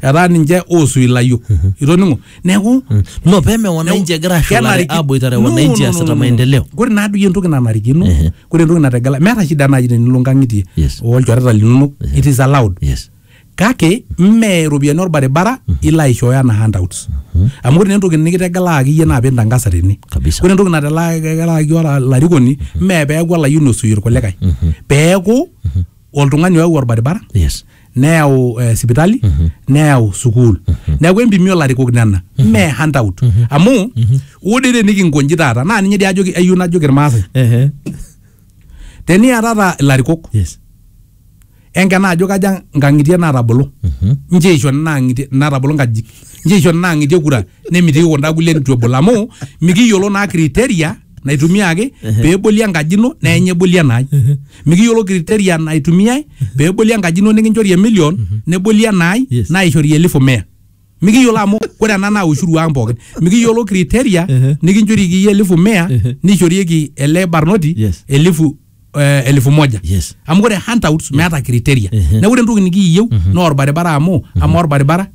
etaa ninche oosu ilayiok itoning'o neeku no peme wananchi egira ashulare kenariki- aboitare No, wananchi no, no, asita no, no. maendeleo Kore naa doi entoki nanarikino, Ehe. kore entoki nategela, meeta shida naaji tenilo nkang'itie Yes. olchoreta linonok, it is allowed. yes Kake mme iropiyiani olbaribara ilo aishooyo anaa handouts. Amu ore naa entoki nikitegelaaki iyie naa pintangasa tene. Kabisa. Ore entoki nategelaaki ora- olarikoni mme peeku olayioni osuie irkulikae. Peeku oltung'ani oyau olbaribara yes neyau eh, sipitali neyau sukuul neeku empimi olarikok nena mme handout amu ore dii tenikinkonji taata naa ninye dii ajoki ayieu najoki irmaasai Ehe. teniatata ilarikok Yes. enkena ajo kaja nkang'itie naatabolo nche eisho nena ang'itie naatabolo nkajijik nche eisho nena ang'itie kura nemitiki kunda kulie nitu ebol amu mikiyiolo naa kriteria naitumiaki pee eboli enkaji ino naa enye eboli enaai mikiyiolo criteria naitumiai pee eboli enkaji ino nikinchori emilion neboli enaai Yes. naishori elifu mia mikiyiolo amu ore ena naa ushuru ang pookin mikiyiolo criteria Ehe. nikinchorieki iyie elifu mia Ehe. nishorieki ele barnoti Yes. elifu eh, elfu moja Yes. amu ore handouts meeta criteria Ehe. neeku ore entoki nikiyieu naa orbaribara amu ama orbaribara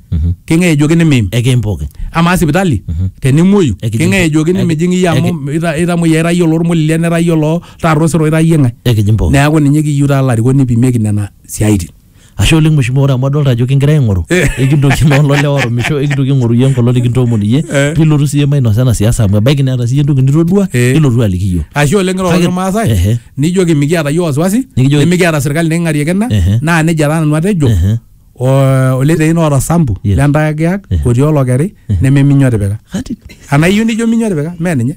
keng'ae ejoki nimiim Ekeim pookin. amaa sipitali tenimuoyu Ekijing- keng'ae ejoki eki- nimijing iyie amu eki- ita- itamuoyia ira iyie olormolilia nira iyie oloo taata osero ira iyie ng'ae Ekijing pookin. neeku ninye kiyieu taa ilarikok nipimieki nena siaitin Ashe oleng mheshimiwa ore amu adolta ajo kingira aing'oru ekintoki naa olole orumisho ekintoki aing'oru iyie enkolong nikintoomon iyie Eh. pilotu siiyie mainosa ena siasa amu ebaiki neeta siiyie entoki nitodua Eh. nilotu aliki iyiook. ashe oleng ira Kake- oleng Irmaasai Ehe. nijoki mikiata iyie wasiwasi Nikijoki- nimikiata serkali niking'ariekina Ehe. naa nejia taa nanu atejo Ehe. o- oliteiin oota sambu Yes. lentayakiyak otii olokeri neme minyo tipika Kati. anaa iyieu nijo minyo tipika mee ninye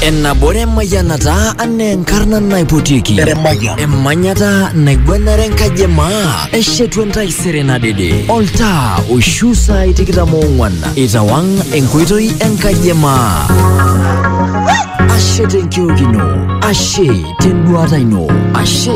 Ennabore mayianata anaa enkarna naipotieki emanyata naigwenare enkaji e maa eshetu entaisere nadede oltaa oishu saai tikitam oong'wan itawang enkoitoi enkaji e maa ashe tenkiok ino ashe tenduata ino ashe